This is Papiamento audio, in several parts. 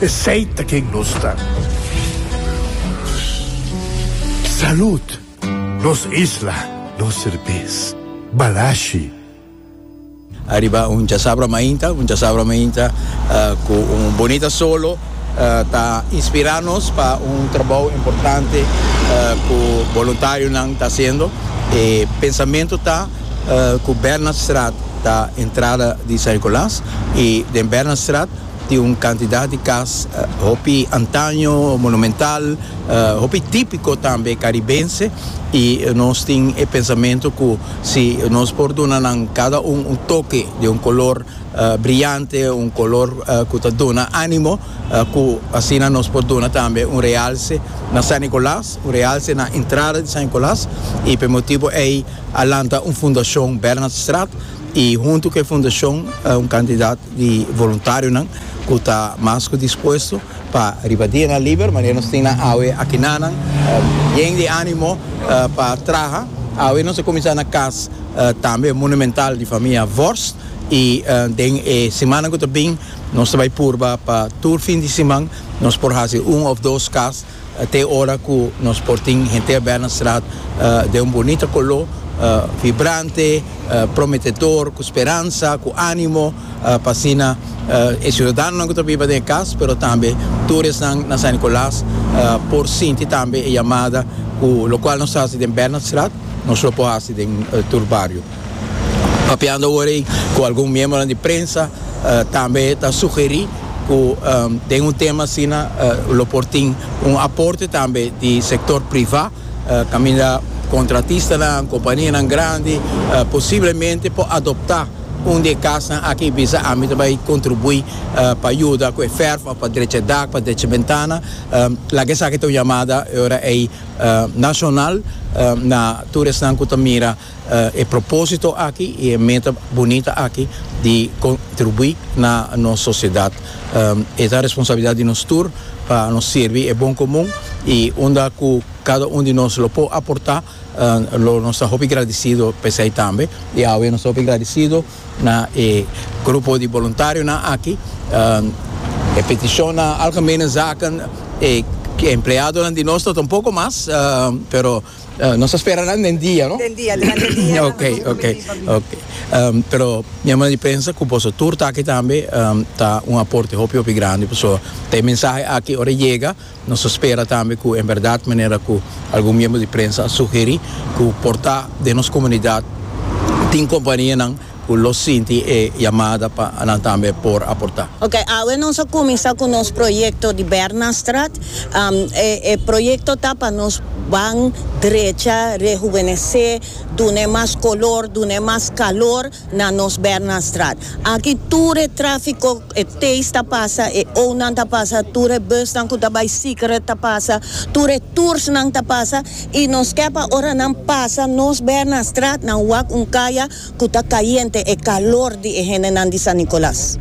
Esey ta ken nos ta. Salud! Nos isla, nos serbes. Balashi. Ariba un chasabra mainta, un chasabra mainta cu un bonita solo ta inspira nos pa un trabao importante cu boluntarionan ta haciendo. E pensamento ta cu Bernardstraat ta entrada di San Nicolas y den Bernardstraat Tin un kantidat di kas, hopi antaño, monumental, hopi típiko tambe karibense, i nos tin e pensamentu ku si nos por duna nan kada un un toke di un kolor briante, un kolor ku ta duna ánimo, ku asina nos por duna tambe un realse na San Nicolas, un realse na entrada di San Nicolas, i p'e motibu ei a lanta un fundashon Bernhardstraat, i huntu ku e fundashon un kantidat. di voluntarionan cu ta mas cu dispuesto pa riba dianan liber, manera nos tin nan awe aki na nan, yen di animo pa traha. Awe nos a cuminsa na cas tambe monumental di famia Vorst y den e simannan cu ta bin nos ta bay purba pa tur fin di siman nos por haci un of dos cas Te ora cu nos por tin henter bel na straat den un bonita color, vibrante, prometedor, cu speransa, cu animo, pa asina e ciudadanonan cu ta biba den e cas, pero tambe tur esnan na San Nicolas por sinti tambe e yamada cu locual nos haci den bel na straat nos lo por haci den tur bario. Papiando awor ei cu algun miembronan di prensa tambe ta sugeri cu den un tema asina lo por tin un aporte tambe di sector priva caminda contratistanan, companianan grandi posiblemente por adopta un di e casnan aki y bisa ami ta bay contribui pa yuda cu e verf of pa drecha e dak, pa drecha e bentana, laga esaki ta un yamada e ora ei nacional na tur esnan cu ta mira E propósito aki i e meta bunita aki di kontribuí na nos sosiedat e ta responsabilidat di nos tur pa nos sirbi e bon komun i unda ku kada un di nos lo por aportá lo nos ta hopi gradisido pa esei tambe i awe nos ta hopi gradisido na e grupo di boluntarionan aki e petishonnan algemenezaken e empleadonan di nos ta un poko mas pero Uh, nos a spera nan den dia, no? Den dia, durante el dia. ok, ok, ok. Um, pero mi amo di prensa cu boso tur taki tambe um, ta un aporte hopi hopi grande. Boso te mensaje aki ora llega, nos a spera tambe cu en verdad manera cu algun miembro di prensa a sugeri cu porta den nos comunidad tin compania nan cu lo sinti e yamada pa nan tambe por aporta. Ok, awe nos a cuminsa cu nos proyecto di Bernastrat. E proyecto ta pa nos ban drecha rehubenece, dun'e mas color, dun'e mas calor na nos Bernastrat. Aki tur e trafico, e tays ta pasa, e onan ta pasa, tur e busnan cu ta bay Siquerret ta pasa, tur e toursnan ta pasa y nos ke pa ora nan pasa nos Bernastrat nan wak un caya. ku ta kayente e kalor di e hendenan di San Nicolas.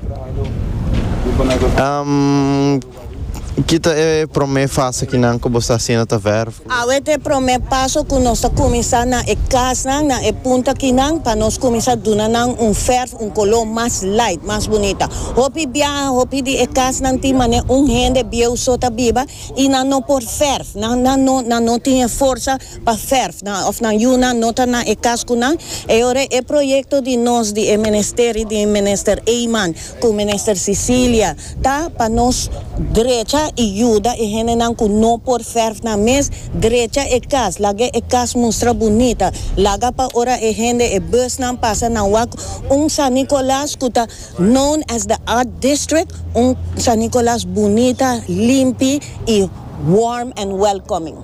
Ki ta e promé fase ki nan ku bo sta asina ta vèrf? Awe ta e promé paso ku nos ta kuminsá na e kasnan, na e punta akinan, pa nos kuminsá duna nan un vèrf, un koló mas lait, mas bunita. Hopi biaha, hopi di e kasnan tin manera un hende bieu so ta biba i nan no por vèrf, nan no tin e forsa. pa verf nan of nan yu nan no ta na e cascunan e ora e proyecto di nos di e Ministeri di Minister Eyman cu Minister Cecilia ta pa nos drecha y yuda e hendenan cu no por verf nan mes drecha e cas laga e cas mustra bunita laga pa ora e hende e bus nan pasa nan wak un San Nicolas cu ta known as the art district un San Nicolas bunita limpi y warm and welcoming.